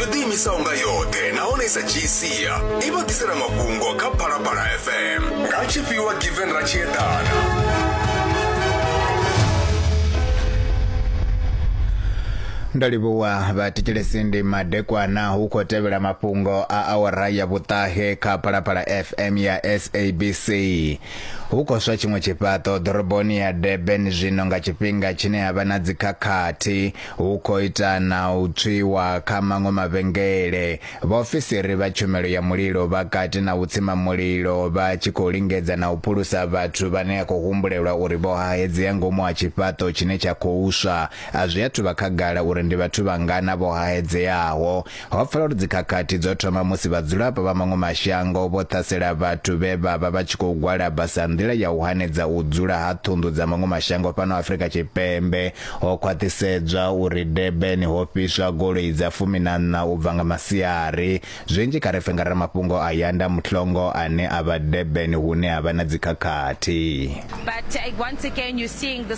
yo ḓiimisaho nga yoṱhe nahone isa dzhii sia i vha ḓisela mafhungo kha phalaphala fm nga tshifhiwa given ra tshi eḓana ndo livhuwa vhatikelesi ndi madekwana hu khou tevhela mafhungo a awara ya vhuṱahe kha phalaphala fm ya sabc hu khou swa tshiṅwe tshifhaṱo ḓoroboni ya durban zwino nga tshifhinga tshine ha vha na dzikhakhathi Hu khou ita na u tswiwa kha maṅwe mavhengele. Vhaofisiri vha tshumelo ya mulilo vha kati na u tsima mulilo vha tshi khou lingedza na u phulusa vhathu vhane a khou humbulelwa uri vho hahedzea ngomu ha tshifhaṱo tshine tsha khou swa. A zwi athu vha khagala uri ndi vhathu vhangana vho hahedzeaho. Ho pfala uri dzikhakhathi dzo thoma musi vhadzulapo vha maṅwe mashango vho ṱhasela vhathu vhe vha vha vha tshi khou gwalaba sa nḓila ya u hanedza u dzula ha ṱhunḓu dza maṅwe mashango fhano Afrika Tshipembe. Ho khwaṱhisedzwa uri Durban ho fhiswa goloi dza fumi na nṋa u bva nga masiari. Zwinzhi kha ri pfe nga ramafhungo a Yanda Mhlongo ane a vha Durban hune ha vha na dzikhakhathi. But uh, once again, you're seeing the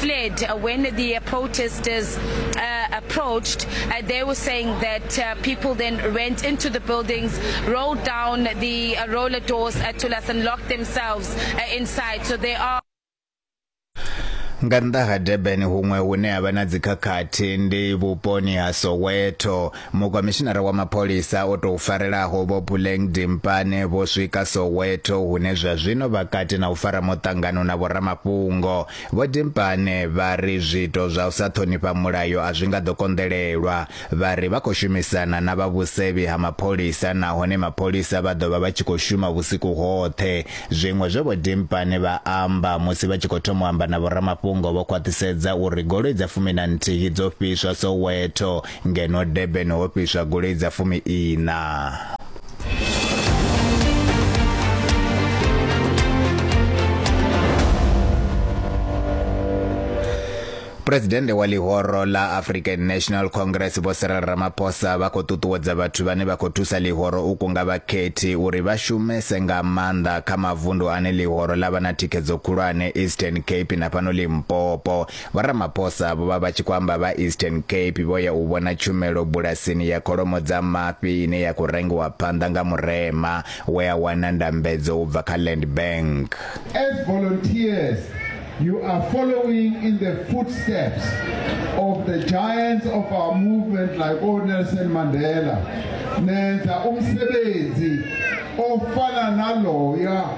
fled uh, when the uh, protesters uh, approached. Uh, they were saying that uh, people then went into the buildings, rolled down the uh, roller doors uh, to us and locked themselves uh, inside. So they are nga nnḓa ha durban huṅwe hune ha vha na dzikhakhathi ndi vhuponi ha soweto mukomishinara wa mapholisa o tou farelaho vho puleng dimpane vho swika soweto hune zwa zwino vha kati na u fara muṱangano na vhoramafhungo Vho Dimpane vha ri zwiito zwa u sa ṱhonifha mulayo a zwi nga ḓo konḓelelwa. Vha ri vha khou shumisana na vha vhusevhi ha mapholisa nahone mapholisa vha ḓo vha vha tshi khou shuma vhusiku hoṱhe. Zwiṅwe zwe Vho Dimpane vha amba musi vha tshi khou thoma u amba na vhoramafhungo vho khwaṱhisedza uri goloi dza fumi na nthihi dzo fhiswa Soweto ngeno Durban ho fhiswa goloi dza fumi ina. Presidente wa ḽihoro ḽa African National Congress Vho Cyril Ramaphosa vha khou ṱuṱuwedza vhathu vhane vha khou thusa ḽihoro u kunga vhakhethi uri vha shumese nga maanḓa kha mavundu ane ḽihoro ḽa vha na thikhedzo khulwane Eastern Cape na fhano Limpopo Vho Ramaphosa vho vha vha tshi khou amba vha Eastern Cape vho ya u vhona tshumelo bulasini ya kholomo dza mafhi ine ya khou rengiwa phanḓa nga Murema we a wana ndambedzo u bva kha Land Bank. As volunteers, you are following in the footsteps of the giants of our movement like O Nelson Mandela. Nenza umsebenzi ofana naloya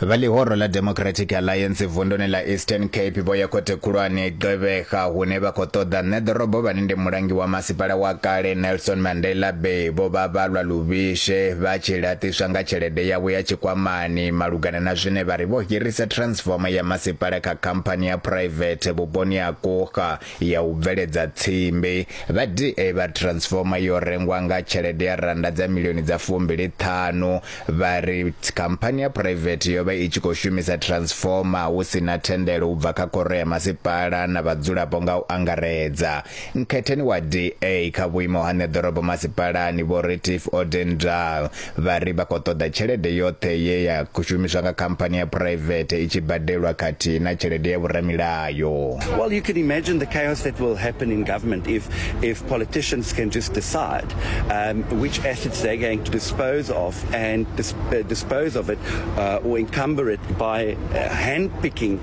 Vha ḽihoro ḽa Democratic Alliance vunduni ḽa Eastern Cape vho ya khothe khulwane Gqeberha hune vha khou ṱoḓa nṋe ḓorobo vhane ndi mulangi wa masipala wa kale Nelson Mandela Bay vho vha vha lwa luvhishe vha tshi laṱiswa nga tshelede yavho ya tshikwamani malugana na zwine vha ri vho hirisa transformer ya masipala kha khamphani ya private vhuponi ha Kuga ya u bveledza tsimbi vha DA vha Transformer yo rengwa nga tshelede ya rannda dza milioni dza fumbili ṱhanu vha ri khamphani ya phuraivethe yo vha i tshi khou shumisa Transformer hu si na thendelo u bva kha khoro ya masipala na vhadzulapo nga u angaredza. Nkhetheni wa DA kha vhuimo ha Neḓorobo Masipalani Vho Retief Odendaal vha ri vha khou ṱoḓa tshelede yoṱhe ye ya khou shumiswa nga khamphani ya phuraivethe i tshi badelwa khathihi na tshelede ya vhoramilayo Well, you can imagine the chaos that will happen in government if, if politicians can just decide um, which assets they're going to dispose of and dis uh, dispose of it uh, or encumber it by uh, handpicking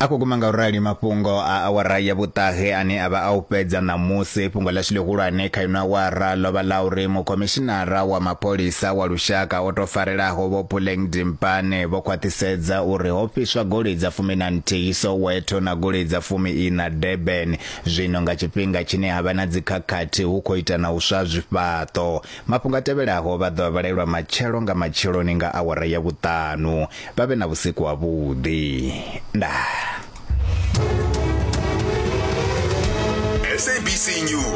a khou guma nga u rali mafhungo a awara ya vhuṱahe ane a vha a u fhedza ṋamusi fhungo ḽashu ḽihulwane kha ino awara ḽo vha ḽa uri mukhomishinara wa mapholisa wa lushaka o tou farelaho vho puleng dimpane vho khwaṱhisedza uri ho fhiswa goloi dza fumi na nthihi soweto na goloi dza fumi ina durban zwino nga tshifhinga tshine ha vha na dzikhakhathi hu khou ita na u swa zwifhaṱo Mafhungo a tevhelaho vha ḓo a vhalelwa matshelo nga matsheloni nga awara ya vhuṱanu. Vha vhe na vhusiku ha vhuḓi. Ndaa. SABC News.